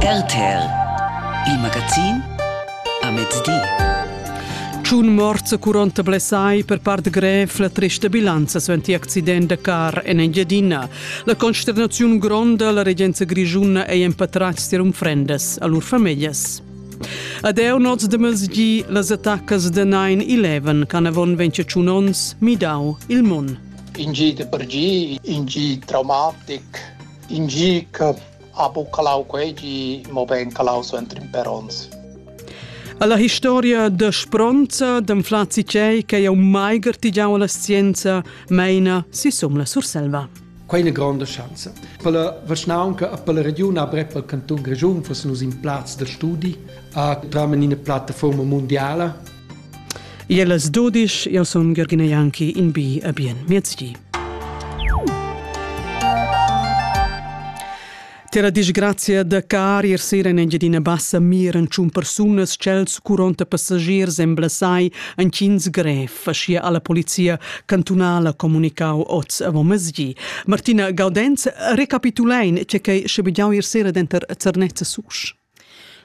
RTL Il magazin a mezdi. Tschun morts e 40 blessai per part grev la trista bilanza suenter accident da car en Engiadina. La consternaziun gronda la regenza grigiuna ei empatratgs tier unfrendas a lur famiglas. Ad eu noz de mezgi las attacas de 9-11 can avon 21 ons midau il mun. In gi de per gi, in gi traumatic, In gi che ha buca lau quei gi, mobein calau suenter in per onns. Alla historia da spronza d'anflazi tgei che jau mai gartigiau alla scienza meina si sum la Surselva. Quei è una grande chance. Per la Vaschnaunca e per la regione avrei per il canton Grigiun fosse nus in plaz da studi a tramen in una piattaforma mondiale Ie las 12, io sun Georgina Janki in bi a bien miezdi. Tera disgrazia da car ir sera in Engiadina Bassa miran tschun persunas chels curonta passagiers en Blasai an Cins grev, faschia alla polizia cantunala comunicau oz avant mesdi. Martina Gaudenz, recapitulein ce che scebigiau ir sera denter Zernezza Susch.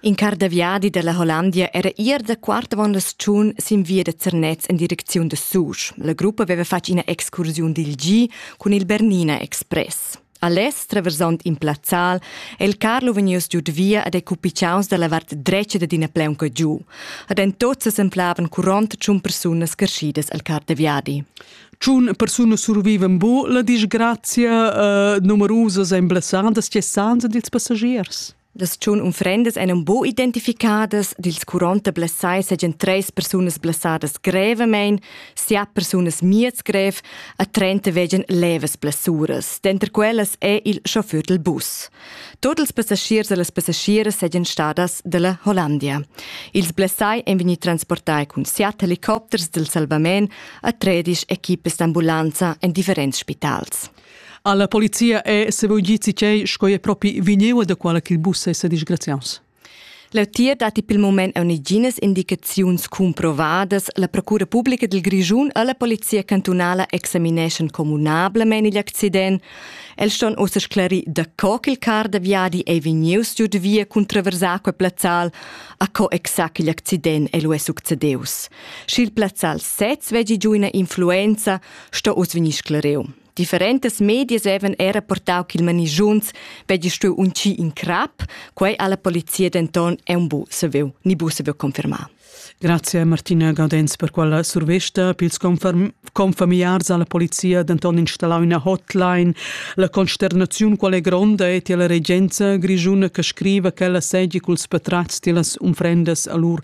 In carr da viadi dalla Hollandia era ier da quart avon la stagiun sin via da Zernez en direcziun da Susch. La gruppa veva fatg ina excursiun dil gi cun il Bernina Express. A lez, traversond in plazzal, è il Carlo vegnius giu de via ad ei cupicaus dalla vart dretga dad ina pleunca giu. Ad en tots semplavan curont tschun persunas carschidas al car de viadi. Tschun persunas survivan bu la disgrazia uh, numerusas e emblassandas tgessanza dils passagiers. Las tschun unfrendas ein un buc identificadas, dils curonta blessai seigien treis persunas blessadas grevamein, siat persunas miez grev e trenta vegien levas blessuras. Denter quellas è il chauffeur del bus. Tot ils passagiers e las passagieras seigien stadas dalla Hollandia. Ils blessai ein vegni transportai cun siat helicopters del salvament a tredisch equipes d'ambulanza en differents spitals. Alla polizia è sevolgizi cei sco è propi vigneua da quala che il bus è disgraziaus. Leutier datti pel moment uniginas indicaziuns cumprovadas. La Procura Publica del Grischun e la Polizia Cantunala examineschan communablement igl accident. Els ston ossa sclarir da co che il car da viadi è vegnius giu de via cun traversar quel plazzal, a co exact igl accident è lu è succedeus. Sch'il plazzal sez veggi giu ina influenza, sto oz vegnir scleriu. Differentas medias haven era portau ch'il manigiuns veggi stuiu uncir in crap, quei alla polizia denton è un bu saviu, ni bu saviu confermar. Grazie Martina Gaudens per quella survesta. Pils conferm confamiliars alla polizia denton installau ina hotline. La consternaziun qual è gronda è tier la regenza grigiuna che scriva che ella segi culs patrats tilas unfrendas a lur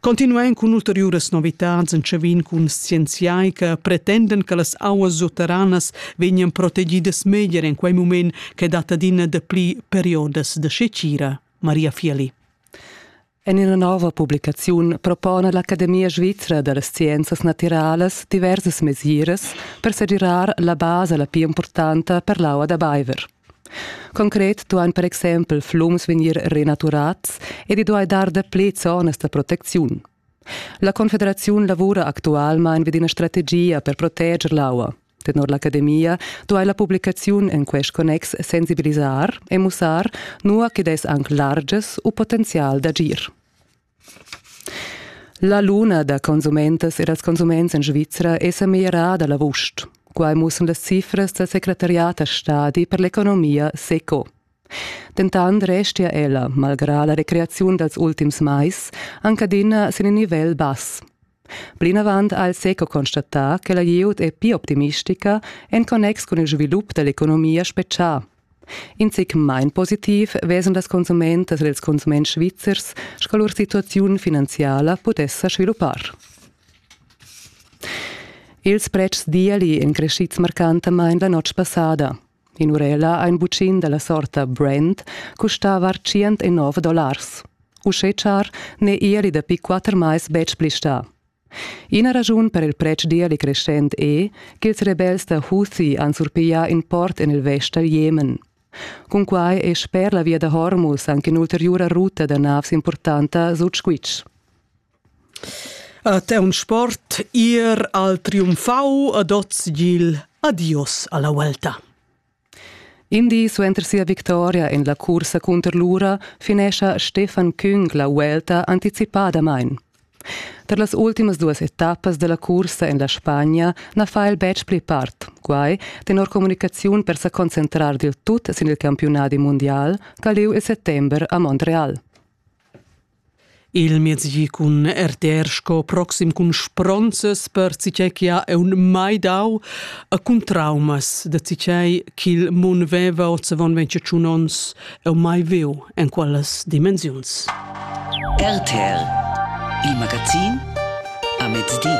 Continuain cun ulteriuras novitads entschavin cun scienziai che pretendan che las auas sutteranas vegnan protegidas meglier en quei mument che dat adina dapli periodas da secira. Maria Fieli. En ina nova publicaziun propona l'Academia svizra da las scienzas natiralas diversas mesiras per segirar la basa la pli importanta per l'aua da baiver. Concret duain per exempel flums vegnir renaturats ed i duai dar dapli zonas da protecziun. La Confederaziun lavura actualmain vid ina strategia per proteger l'aua. Tenor l'academia duai la publicaziun en quest connex sensibilisar e mussar, nua ch'id es anc largias u potenzial d'agir. La luna da consumentas e dals consuments en Svizra è sa meglierada l'avust. Quai mussan las cifras dal secretariat a stadi per l'economia SECO. Dentant restia ella, malgrà la recreaziun dals ultims mais, anc adina sin in nivel bass. Plinavant ha el seco constatà che la glieud è pli optimistica en connex cun il svilup da l'economia spetgà. In zic main positiv vesend las consumentas ed ils consuments svizzers, sco lur situaziun finanziala pudess sa sviluppar. Ils pretschs d'ieli èn crescids marcantamain la notg passada. In'urella ha in buccin dalla sorta Brand custava tschient e nov dollars. Uschè char n'è ieli dapi quatter mais betg pli stà. Ina raschun per il pretsch d'ieli crescent è ch'ils rebels da Houthi han surpiglià in port en il vest dal Jemen. Cunquai è sper la via da Hormuz anche un'ulteriura ruta da navs importanta sut squitsch. A Teun Sport ir al triumfau ad oz gil adios alla Vuelta. In di suenter sia victoria en la cursa cunter l'ura finescha Stefan Küng la Vuelta anticipadamain. Per las ultimas duas etappas della cursa en la Spagna na fa el betg pli part, quai tenor comunicaziun per sa concentrar dil tut sin il campiunadi mundial, caliu il settember a Montreal. Il mezdi cun RTR sco proxim cun spronzas per citei che ha aun mai dau a cun traumas da citei ch'il mun veva ozzavon ventschun onns eu mai viu en quellas dimensiuns. RTR Il magazin a mezdi.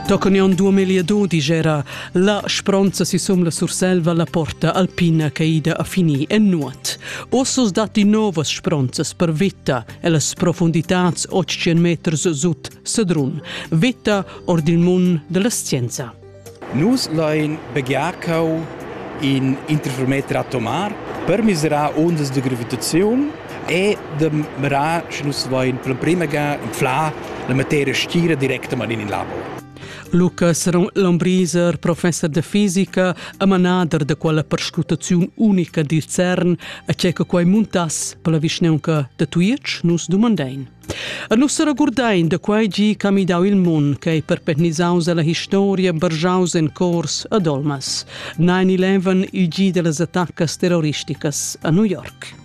Toccanion 2002 digera la spronza si sum la Surselva la porta alpina caida a fini en nuot. Ossos datti novas spronzas per vetta e las profunditads 800 meters sut Sedrun, vetta ord il mund della scienza. Nus lain begiarcau in interferometer atomar per miserar ondas de gravitazione e de mirar, sche nus vain per prima ga inflà la materia stira directament in il labor. Lucas Lombriser, professor de fisica e manader de quella perscrutaziun unica di CERN, a ce che quai muntass per la vischneunca de Tuic, nus dumandein. E nus regurdein de quai gi che midau il mun, che ei perpetnisaus alla historia, bergiaus en cors ad olmas. 9-11, il gi de las attaccas terroristicas a New York.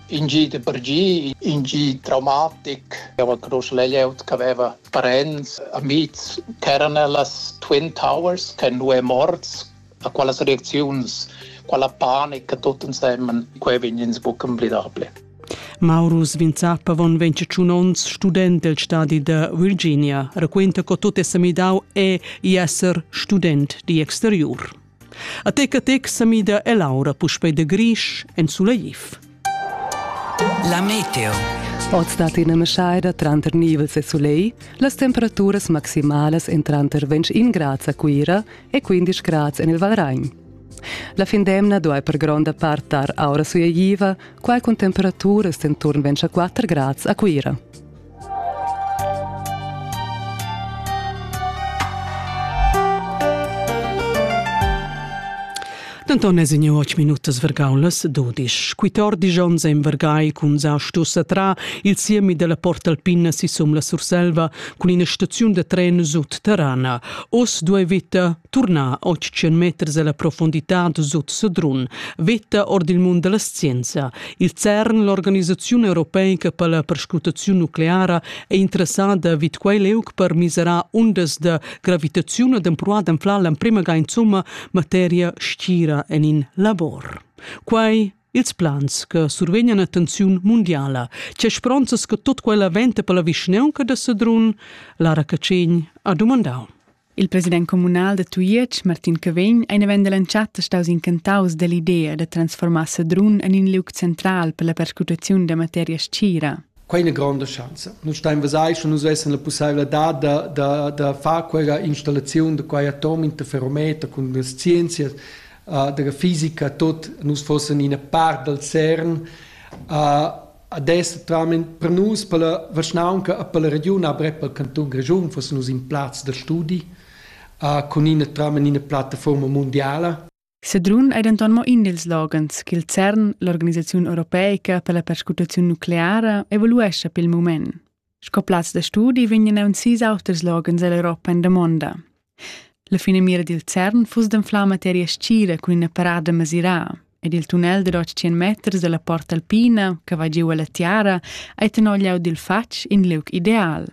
in gi de per gi, in gi traumatic. Ava groß layout che aveva parents, amics, ch'eran las Twin Towers, che nu è morts, a qualas reacziuns, quella panica tutt insemmen, quei vegn ins buc emblidable. Maurus Vinzappa von 21 onns, student del stadi de Virginia, raquenta co tot è semidau e i esser student di exteriur. A tec a tec sa mida e l'aura puspei da grisch en sulegif. La meteo. Oz dat ina meschaida tranter nivels e sulegl, las temperaturas maximalas en tranter 21 grads a Cuira e 15 grads en il Valragn. La fin d'emna duai per gronda part dar aura sulegliva, quai cun temperaturas enturn 24 grads a Cuira. Denton es in och minutas vergaulas dudisch. Quittordisch ons en vergai cun sa stussa tra il siemi della Portalpina sisum la Surselva cun ina staziun da tren sut Terrana. Os due vita turnar 800 meters alla profondità sut Sedrun, vita ord il mund della scienza. Il CERN, l'organisaziun europeica per la perscrutaziun nucleara, è interessada vid quei leuc per miserar undas da gravitaziun ed empruar d'anflar l'emprema ga insomma materia stira en in labor. Quai ils plans che survegnan attenziun mondiala. C'è spronzas che tot quella venta per la vischneunca da Sedrun? Lara Cacegn ha domandau. Il president communal da Tujetsch, Martin Cavegn, è in event dell'entschatta staus incantaus dell'idea da transformar Sedrun en in liug central per la perscrutaziun da materia scira. Quai è una grande chance. Noi stai in Vasai și nu svesen la possibilità da, da, da fare quella installazione di quei atom in ferrometer con le scienze, uh, della fisica, tot, nus fossen in part dal CERN, uh, Ad es totalmaing per nus, per la vischnaunca e per la regiun avrep al cantun Grischun fussen nus in plaz da studi cun ina totalmaing ina plattafuorma mundiala. Sedrun ei denton mo in dils loghens ch'il CERN, l'organisaziun europeica per la perscrutaziun nucleara, evaluescha pil mument. Sco plaz da studi vegnan aunzis auters loghens ell'Europa en damonda. La finamira dil CERN fuss d'anflar materia scira cun ina parada masiraa ed il tunnel da 100 meters dalla Porta Alpina, che va giu alla tiara, ei tenor leu dil fatg in liug ideal.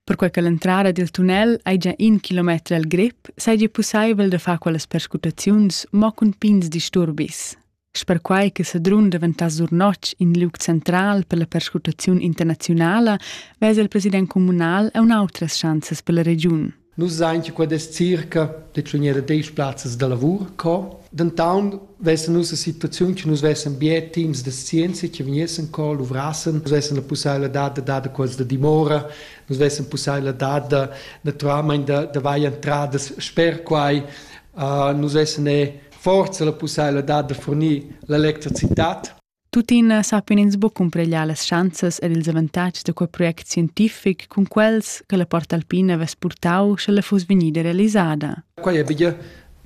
Perquei che l'entrada dil tunnel ei già in kilometer al grip, seigi pusseivel da far quellas perscrutaziuns mo cun pigns disturbis. Sperquai che Sedrun daventà Zurnotg in liug central per la perscrutaziun internaziunala, vesa il president communal e un'autras schanzas per la regiun. Nus sain che quest circa detschunera desch plazzas da lavur co. Dentaun vessen nus a situaziun che nus vessen bia teams de scienza che vegnessen co luvrassen, nus vessen la possibilità da dare quels da dimora, nus vessen possibilità da naturalmente da vai entradas sper quai, uh, nus vessen e forza la pussaivladad da furnir l'electricitat? Tuttina sappian ins buc cumpreglar las schanzas ed ils avantatgs da quei project scientific cun quels che la Port Alpina vess purtau sche la fuss vegnida realisada. Quei è bia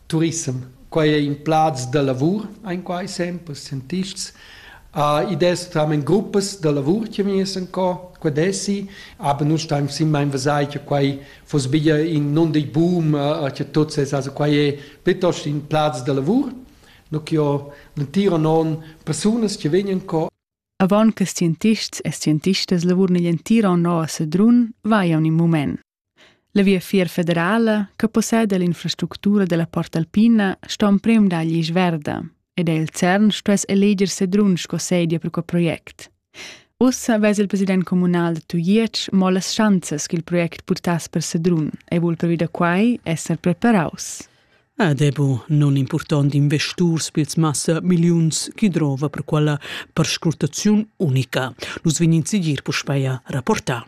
turism. Quei è in plaz da lavur, ein quai sempre scientists. Uh, id es tamen gruppas da lavur che vegnessen co, qued essi, aber nu staim simma in vasai che quai foss be in non dei boom che tot ses also quai è piuttosto in plaz da lavur no che ho l'intira non persunas che vegnan co Avon che scientists e scientistas lavurn igl entira no a Sedrun, va un in mument. La Viafier federala, che possede l'infrastructura della Porta Alpina, sta un prem dagli Isverda. ed el CERN stuess eleger Sedrun sco sedia per quel project. Ussa vess il president communal da Tujetsch mo las schanzas ch'il project purtass per Sedrun e vul pervi da quai esser preparaus. Ed è bu non important investurs pils massa milliuns chi drova per quella perscrutaziun unica. Nus vegnin sigir puspeia rapportar.